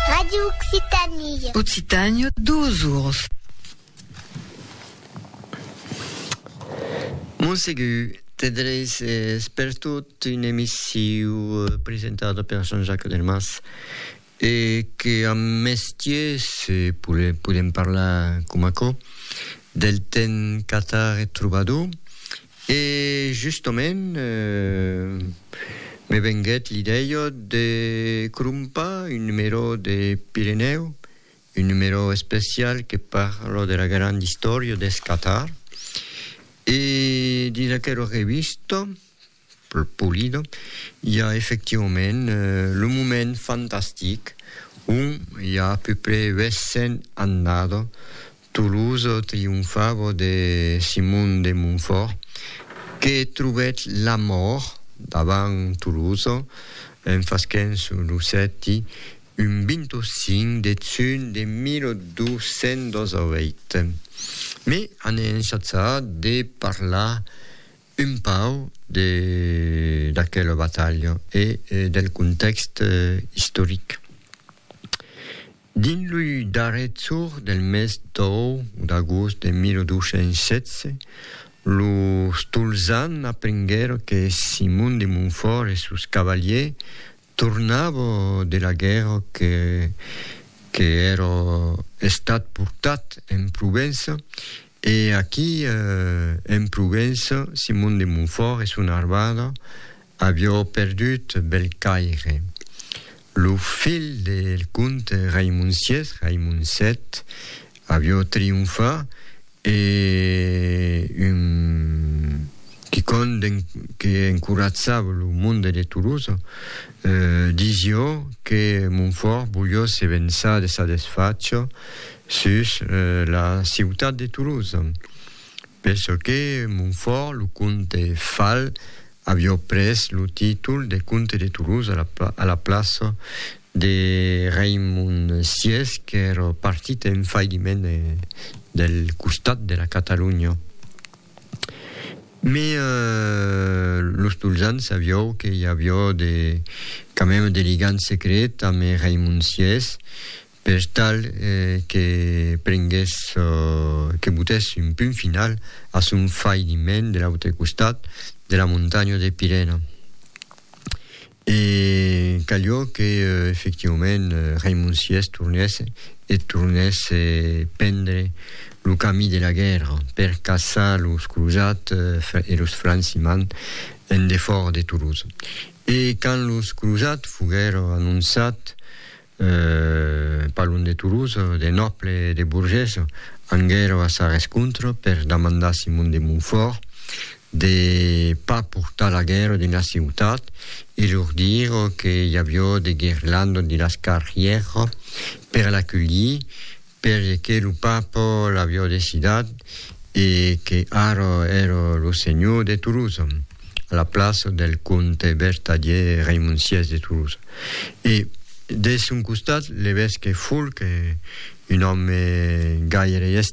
Radio Occitanie. Occitània, dos ours. Montsegur, te dreis es pertot un emissiu presentada per Jean-Jacques Delmas e que am mestier se podem parlar com aquò del temps catar e trobador E justament me venguèt l'idèia de crompar un numerò de Pirenèu, un numerò especial que parla de la granda istòria deth Qatar. E dins aquera revista, polida, i a efectivament lo moment fantastic on i a a peu près 800 annadas Toulouse trionfava de Simon de Montfort que trobèt la mòrt davant Toulouse en fasquent sus lo sèti un 25 de junh de 1208. Me an ensatsat de parlar un pauc de d'aquela batalha e del contèxt istoric. Dins lo darrer jorn del mes d'agost de 1216, los Tolzan aprenguèron que Simon de Montfòrt e sos cavalièrs tornavan de la guèrra que èra estat portat en Provença, e aquí en Provença Simon de Montfòrt e son armada Avió perdut bèl caire. Lo fil del comte Raimon sies, Raimon sèt, avió trionfar e un quicònd que encoratzava lo monde de Tolosa disió que Montfòrt volió se vençar de sa desfacha sus la ciutat de Tolosa, per çò que Montfòrt, lo comte Fal, Avió pres lo títol de comte de Toulouse a la plaça de Raimond vi qu'èr partit en failliment del costat de la Catalonha. Mes los Tolzans sabió que i avió de quand même de ligam secret ame Raimond vi per tal que prengues çò que botés un punt final a son failiment de l'autre costat de la montanha de Pirena. E calió que, efectivament, Raimon Sies tornèsse e tornèsse prendre lo camí de la guèrra per caçar los crosats e los francimans en defòra de Toulouse. E quand los crosats foguèron anonçats Parlon de Toulouse, de nòble e de burgés, anguèro a sa rescontra per damandar Simon de Montfòrt de pas portar la guèrra dins la ciutat e lor dir que i avió de guirlandas dins las carrièras per l'aculhir, Perque lo Papo l'avió decidat e que ara èra lo senhor de Tolosa, a la plaça del comte vertadier Raimond vi de Tolosa. E deth son costat, l'evesque Folc, un òme gaire estimable,